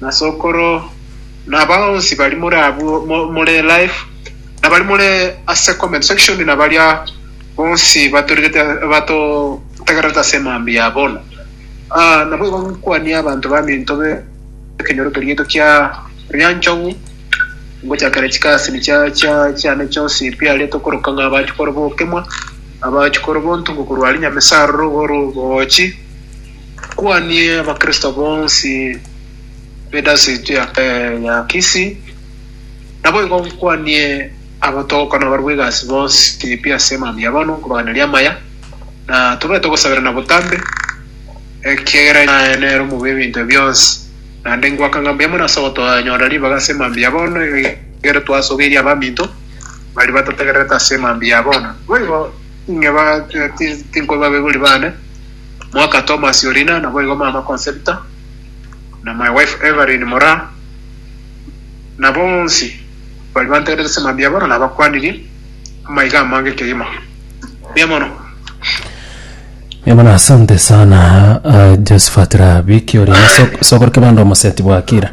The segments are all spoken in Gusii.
Nasokoro, naba onsi bari more abwo mo- more live, nabari more ase comment section, nabaria bonsi batorigete batotegererete ase emambia ya bono. Ah, naboigo nkwanie abanto baminto be ekenyoro keria gito kia Ryanchogu, ngochakera chikasini chia chia chiane chionsi mpiarete okoroka ng'a abachi koroba okemwa, abachi koroba ontungo korwa aria Nyamesaroro, oro obogochi, Kwanie Abakristo bonsi b'edisitiriki ya Kisii. Naboigo nkwanie abatoka na abarwa egasi bonsi pi ase emambia ya bono, nkobaganeria amaya, na tobaete gosaberana botambe, ekiagera naye nere omobe bw'ebinto ebi bionsi. Naende ngoaka ng'a mbuya mono ase ogotonyora ribaga ase emambia ya bono, ekero twasogeirie abaminto baria batotegererete ase emambia ya bono. Boigo, inwe tinkoibabeguria baane. Mwaka Thomas Orina, naboigo mama Concepta na my wife Evelyn Moraa, na bonsi baria bantegerete ase mambia bono nabakwanirie amaiga amange kegima. Mbuya mono. Mbuya mono asante sana uh, Josephat Rabiki ori na so- sokoro kebando omoseti bwa Kira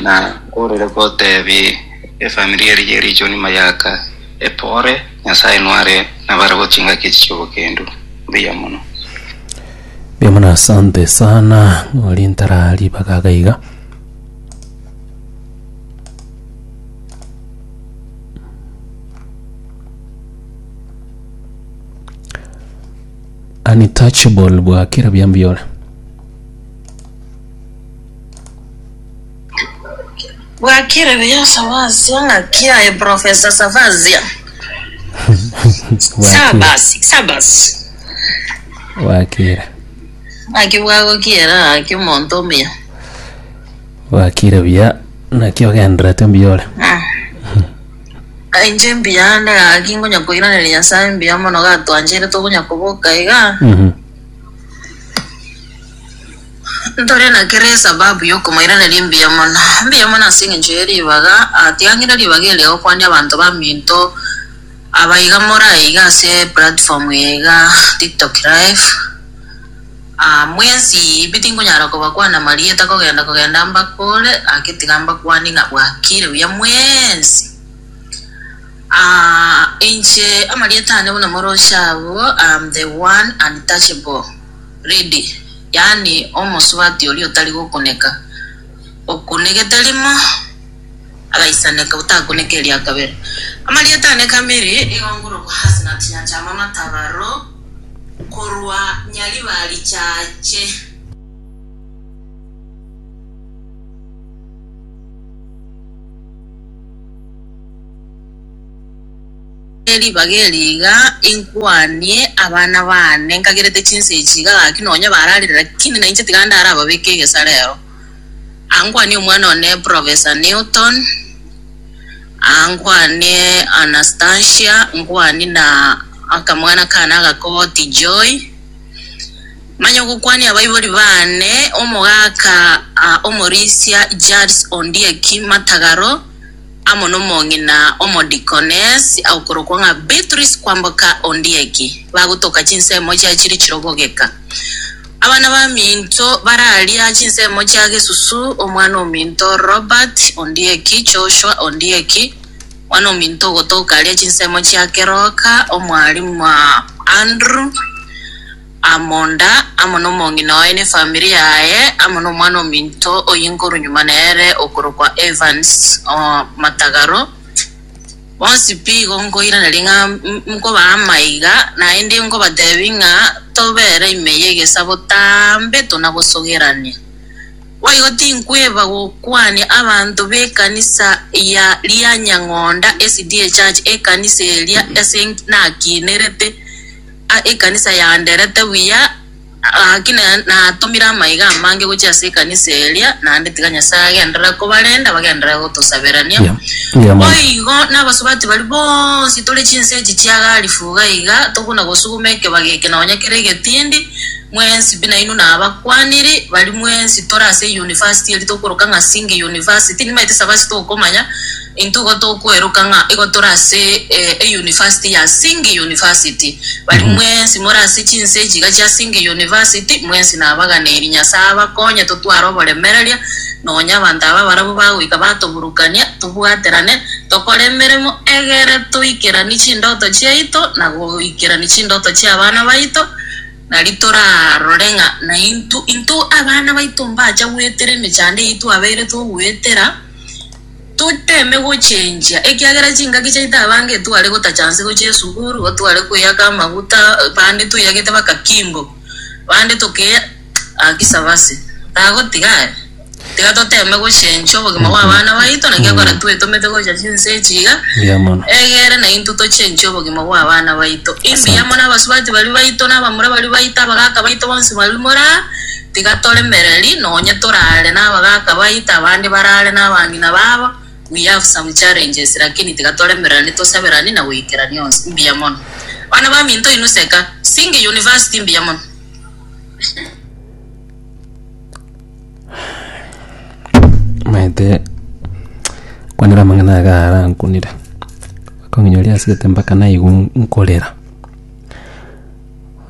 Na orere gotebia efamiri eria ye richoni mayaka epore, Nyasae nware nabare gochinga kechi chi'obokendu. Mbuya mono. Mbuya mono asante sana ng'ori ntara ribaga iga iga untouchable bwakera buya mbuya ore Bwakire buya Savasio, ng'aki yaye Professor Savasio. Bwakire. Sabas, Sabas. Bwakire. Ng'aki bwagokiera ng'aki omonto omuya. Bwakire buya. Naki ogenderete mbuya ore. Ah. Ainche mbiyande ng'aki ngonya koiraneria Nyasaye mbuya mono gatwancherete ogonya koboka iga. Mhm. Ntore na kera esababu y'okomoiraneria mbuya mono. Mbuya mono ase engencho ye ribaga, atiang'ire ribaga erio agokwania abanto baminto aba iga more aye iga ase platform eye iga tiktok live. Ah mwensi pi tinkonyara kobakwana amarieta kogenda kogenda mbakore, gaki tiga mbakwane ng'a bwakire buya mwensi. Ah inche amarieta ane buna morosho abwo, I am the one untouchable. Ready, yaani omosubati oria otari gokuneka, okunegete rimo, agaisaneka, otakuneka eria kabere. Amarieta ane kamiri igo ngorokwa Hasnat Nyachama Matabaro korwa Nyaribari Church. Ase ribaga eri iga inkwanie abana baane nkagerete chinsa echi iga gaki nonya bararire lakini nainche tiga ndarababeke egesa rero. Aa nkwanie omwana one Professor Newton, aa nkwanie Anastasia, nkwanie na akamwana kaane agakoti Joy. Manye ogokwania abaibori baane omogaka aa omorisia James Ondieki Matagaro. amo nomong'ina omodikonesi agokorokwa ng'a Beatrice kwamboka Ondieki, bagotoka chinsemo chia chiri chirobogeka. Abana baminto bararia chinsemo chia Gesusu, omwana ominto Robert Ondieki, Joshua Ondieki, mwana ominto ogotoka aria chinsemo chia Keroka, omwalimu Andrew, amonda, amo nomong'ina oye ne efamiri yaye, amo nomwana ominto oyinguru nyuma nere okorokwa Evans Matagaro. Bonsi pi igo nkoiraneria ng'a nkobaa amaiga, naende nkobatebia ng'a tobere ime y'egesa botambe tonagosogerania. Boigo tinkweba gokwania abanto b'ekanisa ya Lianyang'onda SDA Church ekanisa eria ase nakiinerete. Aa ekanisa yaanderete buya, gaki natomire amaiga amange gochia ase ekanisa eria, naende tiga Nyasae agenderere kobarenda, bagenderere gotosaberania. Yeah. Yeah, man. Boigo nabasubati baria bonsi tore chinse echi chia garifu iga iga, tokona gosuguma ekebago eke nonya kere egetindi, mwensi pi nainwe nabakwaniri, baria mwensi tore ase euniversity eria tokoroka ng'a Sing University, nimaete sabasi tokomanya, Intwe igo tokweroka ng'a igo tore ase eyunivasiti ya Singh University. Baria mwensi more ase chinse echi iga chia Singh University, mwensi nabaganeirie. Nyasae abakonye totware oboremereria, nonya abanto aba barabwo bagoika batoburukania, tobwaterane, tokore emeremo egere toikeranie chindoto chiaito na goikerania chindoto chia abana baito, nari torarore ng'a naintwe intwe abana baito mbacha goetera emechando eyio twabeire togoetera. Toteme gochenchia, ekiagera chingaki chiaito abange tware gotacha anse gochia esuguru, otware kweyaka amaguta, bande tweyagete baka kimbo, bande tokeya aki sabasi. Tagotiga aya, tiga toteme gochenchia obogima bwa abana baito, naki ekero twetomete gocha chinse echi iga, Mbuya mono. egere naintwe tochenchie obogima bwa abana baito. Imbuya mono abasubati baria baito, na abamura baria baito, abagaka baito bonsi baria more aa. Tiga toremereri, nonye torare nabagaka baito, abande barare nabang'ina babo, we have some challenges lakini tiga toremererani, tosaberani na goikerania onsi. Mbuya mono. Abana baminto inwe seka. Singing University mbuya mono. maete kwanera amang'ana aya garankunire akong'inyoria asete mpaka naigwa nkorera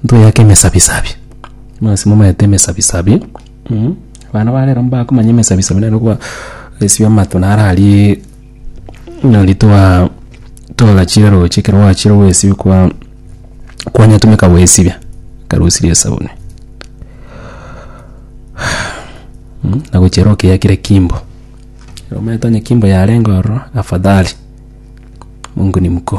ntoyake emesabisabi, nonsi momayete emesabisabi, abana ba rero mbakomanya emesabisabi nere okoba esibia amato naro aria buna rituaa tola chire roche ekero gwachire goesibia kwa kwanyetumeka goesibia ekarusirie esabuni na gochia ero okeyakire kimbo, omanyete onye kimbo yarenge ororo afadhali, Mungu ni mkuu.